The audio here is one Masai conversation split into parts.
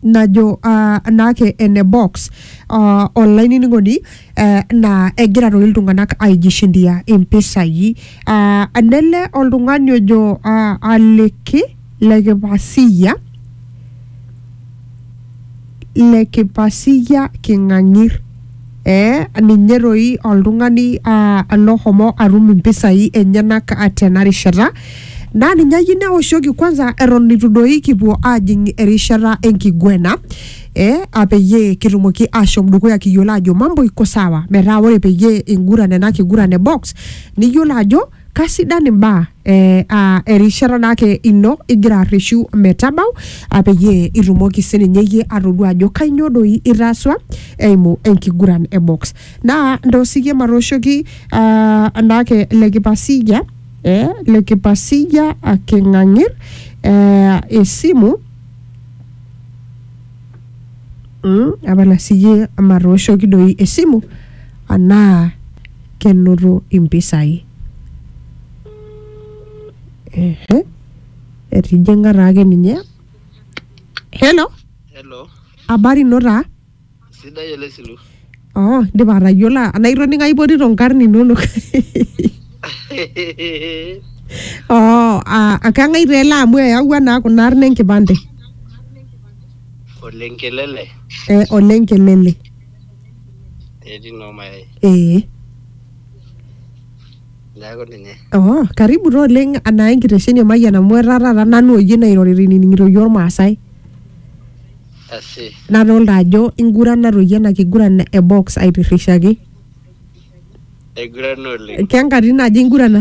najo uh, naake ene box uh, olainining'oni uh, naa egira toi iltung'anak aijishindia impisai uh, nele oltung'ani ojo uh, aliki lekipasiya lekipasiya king'ang'ir Ee, ninye doi oltung'ani aa lohomo atum impisai enyenak tena rishata naa ninye ayieu neoshoki kwanza eton eitu doi kipuo aajing erishata enkiguena ee a peyie kitumoki aashom dukuya kiyiolo aajo mambo iko sawa metaa ore peyie inguran ena kiguran e box niyiolo ajo Kasidan imbaa eh, ah, erishata naake ino igira arreshu metabau ah, peyie itumoki sininye iyie atodua ajo kainyoo doi itaaswa eimu enkiguran e box. Naa ntoosie matooshoki ah, naake le Kipasija eh, le Kipasija ah, King'ang'ir eh, esimu mm, apala siyie matooshoki doi esimu anaa kenoto impisai. Ehe, etijing'a taake ninye. Hello, Hello, habari ino taa? sidai ele silu. Oh, indipa atayiolo anaa itoning'o aipotito nkarn inonok. Oh, ah, kang'ae taa ele amu eyawua naa kuna arn enkipande. Ole Nkelele. Eh, ole Nkelele. etii noo mayai ee neeku ninye oh, karibu taa oleng anaa enkitesheni e mayian amu etaa taata nanu oyie nairorita inining'ito iyie ormaasai asi nadolta ajo ingurana toi ena kiguran e box aitirrishaki aigurana oleng kenkatitin aja ingurana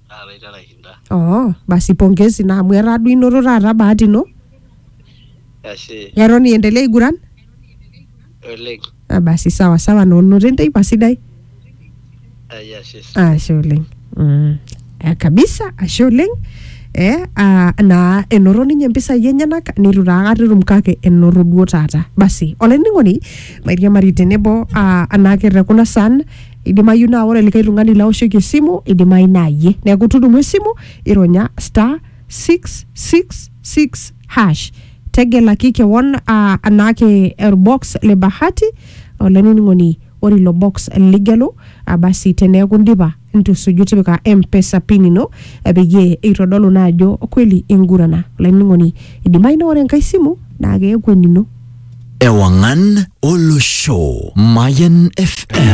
taata itera aishinda oh basi pongezi naa amu etaa duo inoto taata bahati ino ashe eton iendelea aiguran oleng Ah, basi sawa sawa noonoto enteipa sidai ai ashe ashe oleng mm. eh, kabisa ashe oleng eh, ah, naa enoto ninye mpisai enyenak neitu taa akata etum kake enoto duo taata basi olainining'oni mairiamari tenebo ah, anaake te kuna san idimayu naa ore likae tung'ani laoshoki esimu idimayu naa yie neeku tudumu esimu ironya star 666 hash tegelaki kewon uh, anaake orbox le bahati olainining'oni ore ilo box ligelu ah, basi teneeku indipa ntusuju tipika mpesa pin ino eh, peyie eitodolu naa ajo kweli ingurana olainining'oni idimayu naa ore enkae simu naa keeku enino Ewangan Olosho. Mayan FM.